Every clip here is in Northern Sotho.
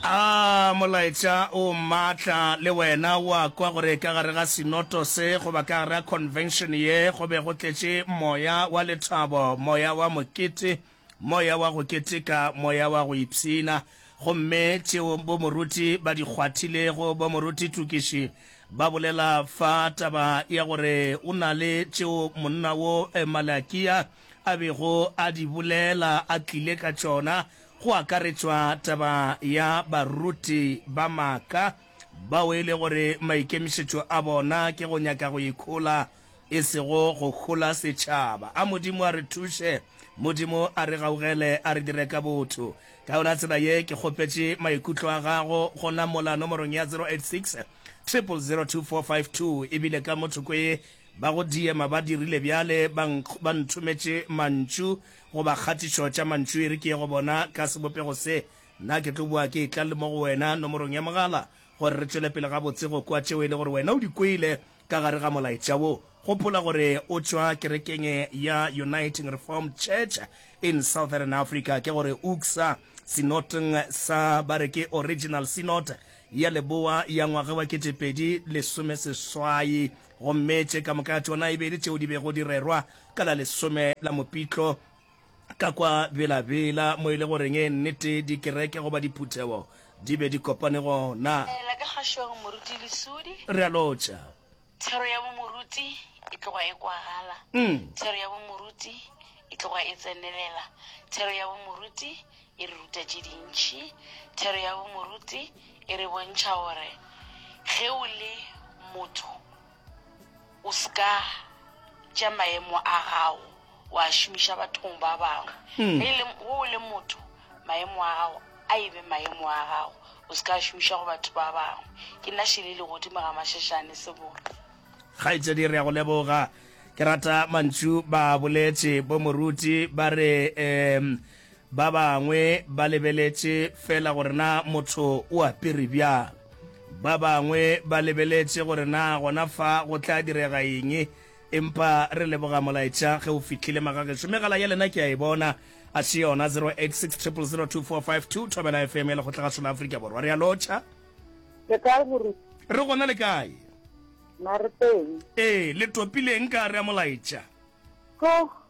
A molaetša o matla le wena o a kwa gore ka gare ga sinoto se goba ka gare ga convention ye go be go tletše moya wa lethabo, moya wa mokete, moya wa go keteka, moya wa go ipshina. Gomme tšeo bomoruti ba di kgwathilego, bomoruti Tukiši, ba bolela fa taba ya gore o na le tšeo monna wo Malakia a bego a di bolela a tlile ka tšona, go akaretšwa taba ya baruti ba maaka bao e le gore maikemišetšo a bona ke go nyaka go ikhola e sego go hola setšhaba. A Modimo a re thuše, Modimo a re gaugele, a re dire ka botho. Ka yona tsela ye ke kgopetše maikutlo a gago gona mola nomorong ya 086 002452 e bile ka mo thoko ye ba go diema ba dirile bjale ba ba nthometše mantšu Goba kgatišo tša mantšu e re ke ye go bona ka sebopego se, nna ke tlo boa ke etla le mo go wena nomorong ya mogala, gore re tšwele pele gabotse go kwa tšeo e le gore wena o di kwele ka gare ga molaetša wo. Gopola gore o tšwa kerekeng ya Uniting Reformed Church in Southern Africa, ke gore UCSA, Synodng sa ba re ke Original Synod ya Leboa ya ngwage wa kete pedi lesome seswai Gomme tše ka moka tšona e be e le tšeo di bego di rerwa ka la lesome la Mopitlo ka kwa Bela-Bela, mo e le goreng nnete dikereke goba diphuthego di be di kopane gona. Ela ka kgašong, Moruti Lesudi. Re a lotšha. Thero ya bomoruti e tloga e kwagala. Thero ya bomoruti e tloga e tsenelela. Thero ya bomoruti E re ruta tše dintši. Thero ya bomoruti e re bontšha gore ge o le motho o se ka tša maemo a gago wa a šomiša bathong ba bangwe. Hmm. Ge e le ge o le motho maemo a gago a e be maemo a gago o se ka a šomiša go batho ba bangwe. Ke nna šele le godimo ga mashešane sebora. kgaetšedi re ya go leboga ke rata mantšu ba boletše bo moruti ba re um Ba bangwe ba lebeletše feela gore na motho o apere bjang. Ba bangwe ba lebeletše gore na gona fa go tla direga eng. Empa re leboga molaetša ge o fihlile magagešo. Megala ya lena ke a e bona, a se yona 0860002452, Thobela FM ya Lekgotlagašo la Afrika Borwa. Re a lotšha. Le kae moruti? Re gona le kae? Na re teng. Ee, le topileng ka re a molaetša? Tlo,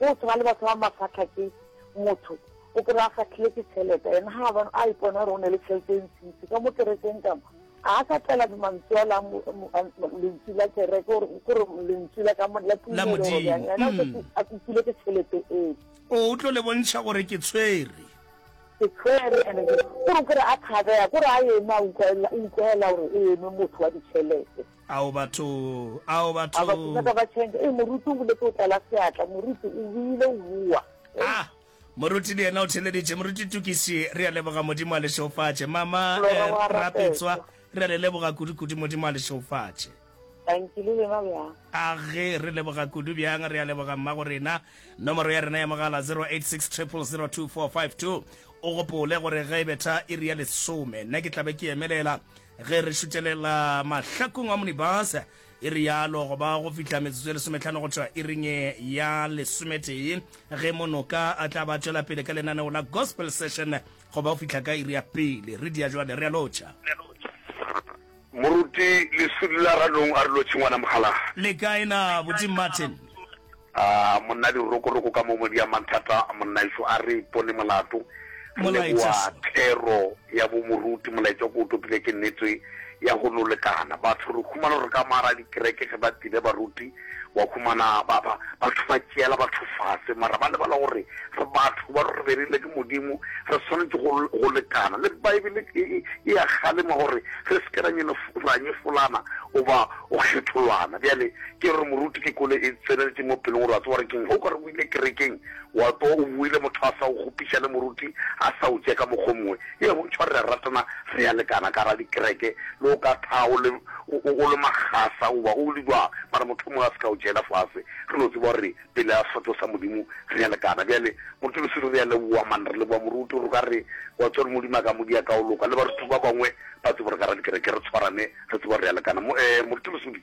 Go tshwana le batho ba mafahla ke motho o kry a fahlile ke tšhelete ene ga ba a ipona gore o ne le tšhelete e ntšintši ka mo kerekeng kamo a sa tlela mantswe a la lentswe la kereke gore lentswe la ka la tumelo gore bjang ene mm. a kopile ke tšhelete e o tlo le bontšha gore ke tshwere ke tshwere ene gore kore a thabega kore a eme a utlwaela gore e eme motho wa ditšhelete Ao batho! Ao batho! Ao batho! Nyaka ba change. Ee, moruti o boletse o tlala seatla. Moruti o buile o bua. Ah! Moruti le yena o theleditše. Moruti Tukisi, re a leboga Modimo a le šeofatše. Mama Rapetswa, re a le leboga kudu-kudu Modimo a le šeofatše. Thanki, le lena bjang? Age, re leboga kudu bjang? Re a leboga mmago rena. Nomoro ya rena ya mogala 0860002452. O gopole gore ge e betha iri ya lesome, nna ke tla be ke emelela. Ge re šutelela mahlakong a monibus, e rialo, go ba go fihla metsotso e lesometlhano go tšwa iring ya lesometee, ge Monoka a tla ba tšwela pele ka lenaneo la Gospel Session go ba go fihla ka iri ya pele. Re dia jwale, re a lotšha. Moruti, Leswidi la Ranong a re lotšhe, Ngwana Mokgalaa. Le kae na, Buti Martin? A monna dirokoroko ka mo modia mathata monnaešo a re ipone molato. Re leboa thero ya bo moruti molaetša ko o topile ke nnete ya go no lekana batho re humana gore ka mara dikereke ge ba tile baruti wa humana ba ba batho ba tšeela batho fase mara ba lebala gore re batho ba re berile ke modimo re swanetše go go lekana le baebele e e a kgalema gore re se ke ra nyenye ra nyefolana o ba o kgetholwana bjale Ke gore moruti ke kole e tseneletše mo pelong gore a tseba gore keng ge o ka re o ile kerekeng wa tsoga o boile motho a sa go kgopiša le moruti a sa go tšee ka mokgwa o mongwe. Ee, go ntšhwa re a ratana re a lekana ka gare ga dikereke le go ka thaga o le, o, o le makgasa goba o le bjang mara motho o mongwe a se ka go tšeela fase re no tseba gore pele ga sefahlogo sa Modimo re a lekana. Bjale moruti Lesedi re a leboga man re leboga moruti gore o ka re wa tseba gore Modimo a ka mo dia ka go loka le baruti ba bangwe ba tsebe gore ka gare ga dikereke re tshwarane re tsebe gore re a lekana. Mo, ee, moruti Lesedi.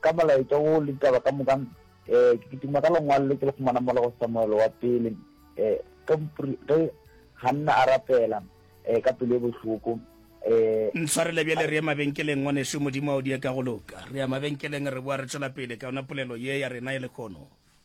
Ka molaetša wo le ditaba ka moka, ke kitima ka lengwalo le ke le fumana mola go Samuele wa Pele, ge mopri, ge Hanna a rapela ka pelo e bohloko. Ntshwarele bjale, re ye mabenkeleng, ngwanešu. Modimo a o die ka go loka. Re ya mabenkeleng, re boa re tšwela pele ka yona polelo ye ya rena ye lekhono.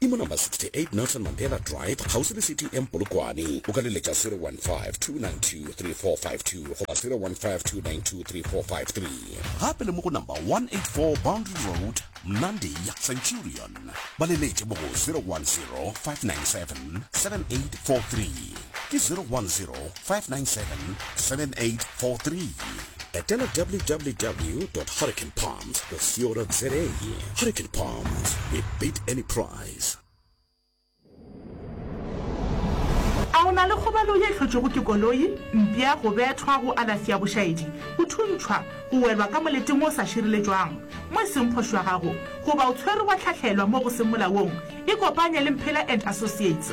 e mo number 68 Nelson Mandela Drive kgauswi le City Inn Polokwane. O ka le letša 0152923452 goba 0152923453. Gape le mo go number 184 Boundary Road, Mnandi, Centurion. Ba le letše mo go 0105977843. Ke 0105977843. Etela www dot hurricanepark. Spesio.za Hurricane Palms, we beat any price. A o na le kgobalo ye hlotšwego ke koloi, mpša, go bethwa, go alafi ya bošaedi, go thuntšhwa, go welwa ka moleteng o sa šireletšwang mo e seng kgoši wa gago, goba o tshwerwe wa hlahlelwa mo go seng molaong? Ikopanye le Mphela and Associates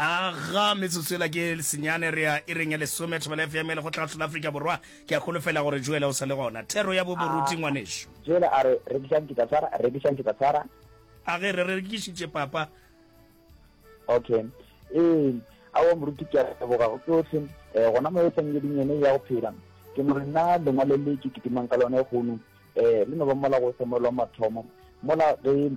Aga metsotso ela ke senyane re ya ireng ya lesome. Thobela FM le go tla hlola Afrika Borwa. Ke a holofela gore Joela o sa le gona. Thero ya boboruti ngwanešu. Joela a re rekišang ke tla tshwara, rekišang ke tla tshwara. A ge re rekišitše papa. Okay. Ee, aowa moruti ke a leboga go tsohle. Eh, gona mo e feng ye dinyene ya go phela. Ke no re nna lengwalo le ke kitimang ka lona e kgono eh le no ba mola go se mola wa mathomo. Mola ge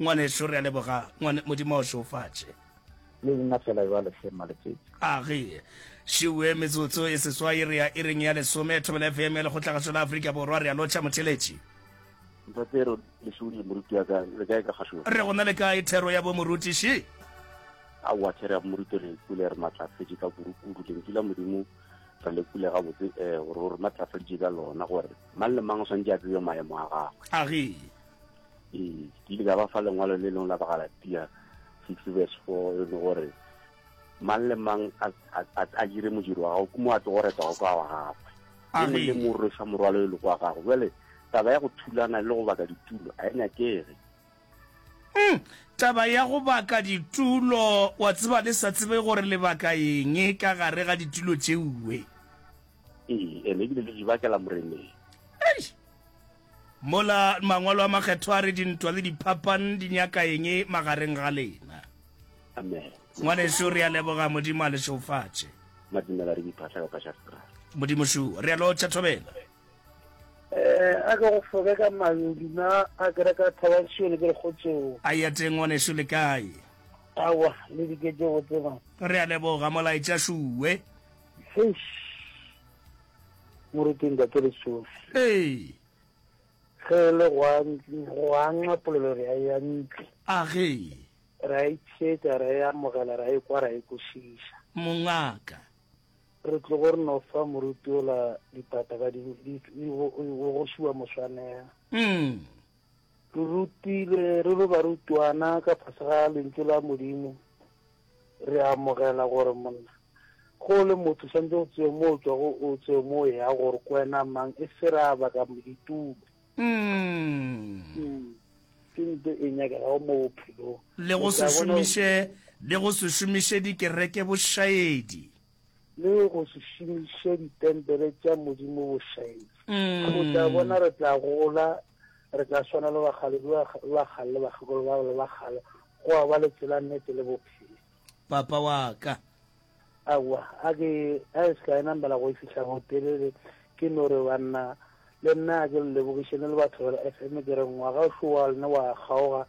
Ngwanešu, re a leboga, ngwane, Modimo a o šeofatše. Le nna fela bjale, hle Mmaletšetši. A re šiwe metsotso e seswai re ya iring ya lesome. Thobela FM ya Lekgotlagašo la Afrika Borwa, re a lotšha, motheeletši. Ntate Aaron, lešole, moruti wa ka, le kae ka gašo? Re go na le kae, Thero ya bo morutiši? Aowa, Thero ya bo moruti, re kwele re matlafetše ka kudu kudu. Lentšu la Modimo re le kwele gabotse, eh, gore o re matlafaditše ka lona, gore mang le mang o swanetše a tsebe maemo a gagwe. A re. ee ke ile ka ba fa lengwalo le lengwe la bagalatia six verse four e le gore mang le mang a dire modiro wa gago ke mo a tlo go reta go kwa wa gagwe e mong le mong rwesa morwalo e le kwa gago jale taba ya go thulana le go baka ditulo a e nyakege hmm, taba ya go baka ditulo wa tseba le sa tsebe gore lebaka eng e ka gare ga ditulo tšeuwe ee ene ebile le di bakela moreneng Mola Mangwalo a Makgethwa a re, Dintwa le diphapan di nyaka eng magareng ga lena? Amen. Ngwanešu, re a leboga. Modimo a le šeufatše. Madumela re diphahla ka pasha stra. Modimo šuwa. Re a lotšha thobela. Eh, a ke go foke ka mayodu na a kereka Thabansio le ke le kgotseo. A ya teng ngwanešu le kae? Awa, le diketše botse man. Re a leboga molaetša Shuwe. Heish. Moruti Ntate Lesofi. Ee. Ge e le gwa gwanxa polelo re a ya ntli. A ge. Ra e tshetsa ra e amogela ra e kwa ra e kwešiša. Mongaka. Re tlogo re no fa moruti ola dipata ba di o go šiwa moswanela. Mm. Re rutile re lo barutwana ka fase ga lentšu la Modimo. Re a amogela gore monna, ge o le motho, swanetše o tsebe mo o tšwago o tsebe mo o eyago gore ko wena mang, e se re a baka ditulo. Umm. Ke nto e nyakegago mo bophelong. Le go se šomiše, le go se šomiše dikereke bošaedi. Le go se šomiše ditempele tša Modimo bošaedi. O tla bona re tla gola Re tla swana le bagaledu ba ba kgale le bakgekolo ba le ba kgale, go a ba le tsela, nnete le bophelo. Papa wa ka. Aowa, a ke a e se ka e namela go e fihla gotelele, ke no re, Banna, le nna a ke le lebogišene le batho ba le FM, ke re, Ngwaga o šowa lne wa kgaoga,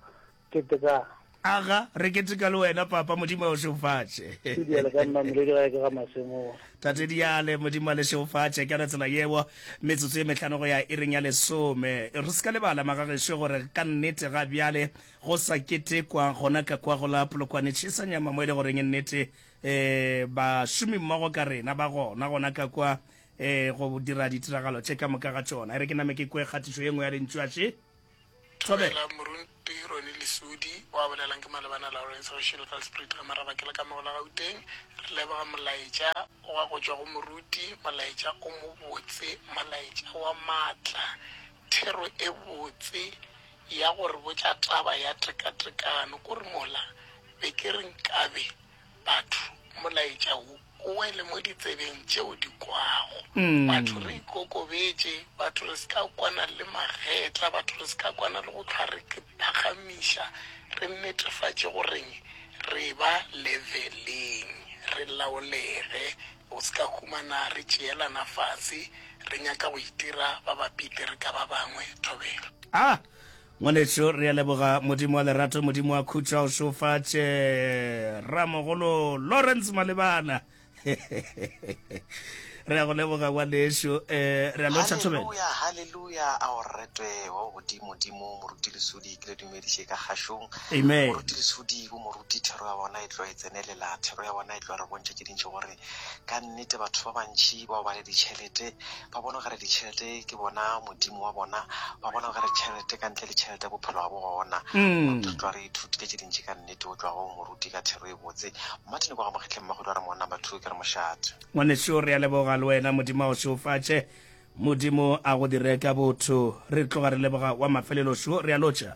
Ketekang. Aga, re keteka le wena, Papa. Modimo a o šeofatše. Tate Diale, ka nna mmiledi gae ke ga Masemola. Tate Diale, Modimo a le šeofatše ka yona tsela yeo. Metsotso ye mehlano go ya iring ya lesome. Re se ka lebala, magagešo, gore ka nnete ga bjale go sa ketekwa gona ka kwa go la Polokwane Tšhesanyama mo e le goreng e nnete um bašomimmogo ka rena ba gona gona ka kwa um go dira ditiragalo tše ka moka ga tšona. E re ke name ke kwe kgatišo ye nngwe ya Lentšu. Atšhe. Thobela. Dumela Moruti Ronnie Lesudi, wa bolelang ke Malebana Lawrence go Shilgal Spruit ka Maraba ke le ka Magola Gauteng. Re leboga molaetša wa go tšwa go Moruti, molaetša o mobotse, molaetša wa maatla, thero e botse ya go re botša taba ya tekatekano. Kore mola be ke re nkabe batho molaetša wo o wele mo ditsebeng tšeo di kwago. Batho re ikokobetše, batho re se ka kwana le magetla, batho re se ka kwana le go hlwa re iphagamiša, re netefatše gore re eba leveleng, re laolege go se ka humana re tšeelana fase re nyaka go itira ba bapite re ka ba bangwe thobela. A Ngwanešu re a leboga Modimo wa lerato Modimo wa khutšo a o šofatše Ramogolo Lawrence Malebana Re a go leboga ngwanešu eh, re a lotšha thobela. Haleluya, haleluya, a o retwe wa o godimo dimo, moruti lesudi, ke le dumediše ka kgašong. Amen. Moruti lesudi, bo moruti, thero ya bona e tlo e tsenelela, thero ya bona e tlo re bontšha tše dintši gore Ka nnete, batho ba bantši bao ba le ditšhelete ba bona okare ditšhelete ke bona modimo wa bona. Ba bona okare tšhelete, ka ntle le tšhelete bophelo ga bo gona. Mm. Re tloa re ithutile tše dintši ka nnete go tloa go moruti ka thero e botse. Martin kwa ga Mokgetleng Magodu a re mowanna number two ke re mošate. Ngwaneso re a leboga le wena Modimo a go šeofatše. Modimo a go dire ka botho. Re tloga re leboga wa mafelelo šo re a lotšha.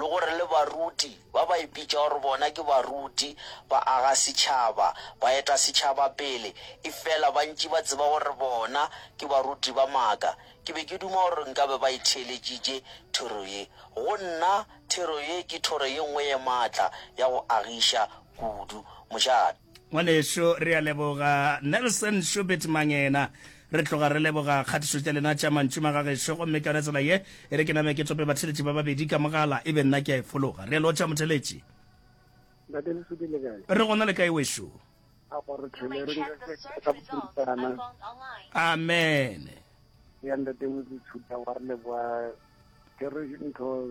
le gore le baruti, ba ba ipitša gore bona ke baruti, ba aga setšhaba, ba eta setšhaba pele, efela ba ntši ba tseba gore bona ke baruti ba maaka. Ke be ke duma gore nka be ba e theeletšitše thero ye. Go nna, thero ye ke thoro ye nngwe ye maatla ya go agiša kudu. Mošate. Ngwanešu, re a leboga. Nelson Schubert Mangena, re tloga re leboga kgatišo tša lena tša mantšu magagešo, gomme ka yona tsela ye e re ke name ke tope batheletši ba babedi ka mogala, e be nna ke a e fologa. Re a lotša, motheletši. Ntate Lesupi, le kae? Re gona le kae, wešu? A go re thele re nke ka bokhiristana. Amen. Ya Ntate Motse Tshuta, wa re leboga. Ke re ntho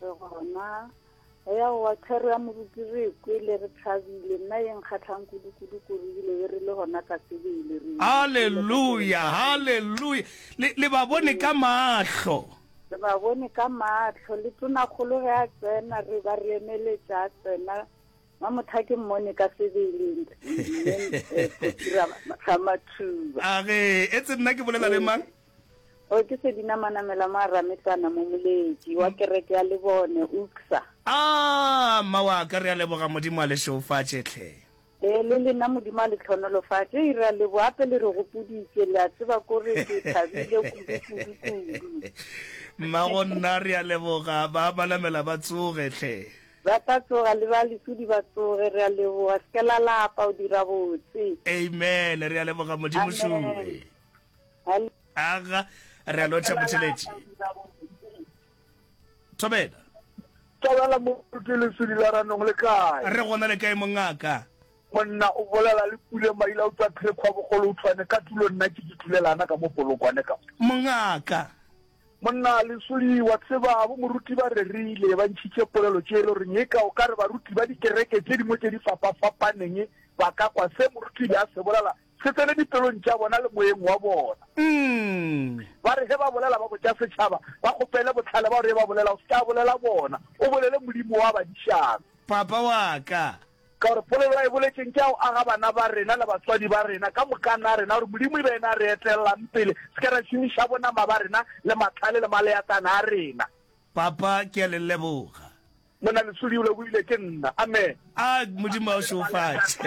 Re gona re ya go wa thero ya moruti re kwele re thabile nna ye nkgatlhang kudu-kudu kudu ebile e re le gona ka sebele re halleluya halleluya le, le ba bone ka mahlo re ba bone ka mahlo le tonakgolo ge a tsena re ba re emeletša a tsena ba motho ke mmone ka sebeleng eh, eh, eh, a re etse nna ke bolela le mang Gore ke se dinamana mela mo Arametana mo moleetši wa kereke ya Lebone, UCSA. Aa, mma wa ka, re a leboga Modimo a le šeofatše, hle. Ee, le lena Modimo a le tlhonolofatše. Hei, re a leboga gape le re gopoditše, le a tseba kore ke thabile kudu, kudu, kudu. Mma go nna, re a leboga, ba ba namela ba tsoge, hle. Ba tla tsoga, le ba lesudi ba tsoge, re a leboga, se ke la lapa, o dira botse. Amen, re a leboga Modimo, Amen. Sure. aga re a lotšha botšheletši thobela tobela moruti lesedi la ranong le kae re gona le kae mongaka monna o bolela le pule maila o tswa phekgwa bogolo o tshwane ka tulo nna ke ke thulelana ka mo polokwane ka mongaka monna lesodi wa tseba bo moruti ba rerile ba ntšhitše polelo tše e le goreng e ka o ka re baruti ba dikereke tše dingwe tše di fapafapaneng ba ka kwa se moruti be a se bolela Se tsene dipelong tša bona le moyeng wa bona. Ba re ge ba bolela, ba botša setšhaba, ba kgopele bohlale ba gore yo ba bolela o se ke a bolela bona, o bolele Modimo wa badišana. Papa wa ka. Ka gore polelo a e boletšeng ke ya go aga bana ba rena le batswadi ba rena ka mokana rena, gore Modimo e be yena a re etlelang pele, se ke ra šomiša bonama ba rena le mahlale le maleakana a rena. Papa, ke a le leboga. Monna Lesodi o lebohile ke nna. Amen. A Modimo a o šeofatše.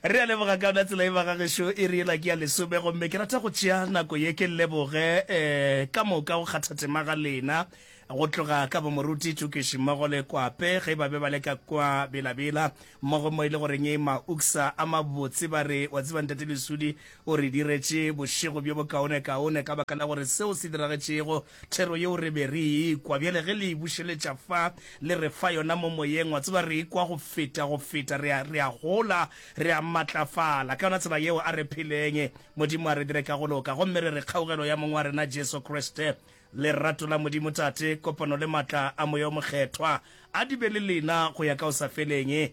Re a leboga ka yona tsela e ba ga gešo e re ela ke ya lesome gomme ke rata go tšea nako ye ke leboge eh, ka moka go kgathatema ga lena go tloga ka bomoruti tukiši mmogo le kwape ge ba be ba le ka kwa belabela mmogo mo e le goreng e mauksa a mabotse ba re wa tseba ntate lesudi o re diretše bošego bjo bokaonekaone ka baka la gore seo se diragetšego Thero yeo re be re e kwa, bjale ge le e bušeletša fa, le re fa yona mo Moyeng, wa tseba, re e kwa go feta, go feta. Re a, re a gola, re a matlafala ka yona tsela yeo. A re pheleng. Modimo a re dire ka go loka. Gomme re re, Kgaugelo ya Mong wa rena Jesu Kriste, lerato la Modimo Tate, kopano le maatla a Moya wo Mokgethwa, a di be le lena go ya ka o sa feleng.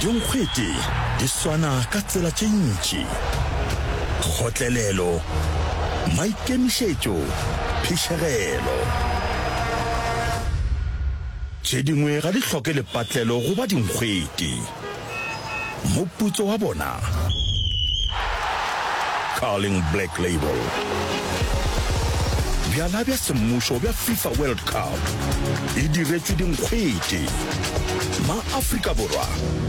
Dinkgwete di swana ka tsela tše ntši, kgotlelelo, maikemišetšo, phišegelo. Tše dingwe ga di hloke lepatlelo go ba dinkgwete. Moputso wa bona. Carling Black Label. Bjala bja semmušo bja FIFA World Cup e diretšwe dinkgwete. Ma-Afrika Borwa,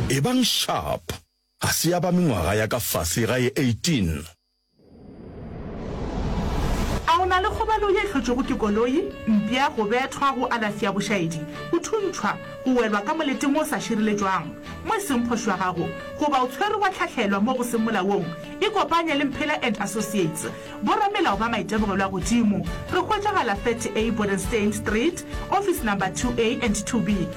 ebang sharp, ga se ya ba mengwaga ya ka fase ga e 18. A o na le kgobalo ye hlotšwego ke koloi, mpša, go bethwa, go alafi ya bošaedi, go thuntšhwa, go welwa ka moleteng o sa šireletšwang mo e seng kgoši wa gago, goba o tshwerwe wa hlahlelwa mo go seng molaong? Ikopanye le Mphela and Associates, boramelao ba maitemogelo a godimo. Re hwetšagala 30A Bodenstein Street, office number 2A and 2B.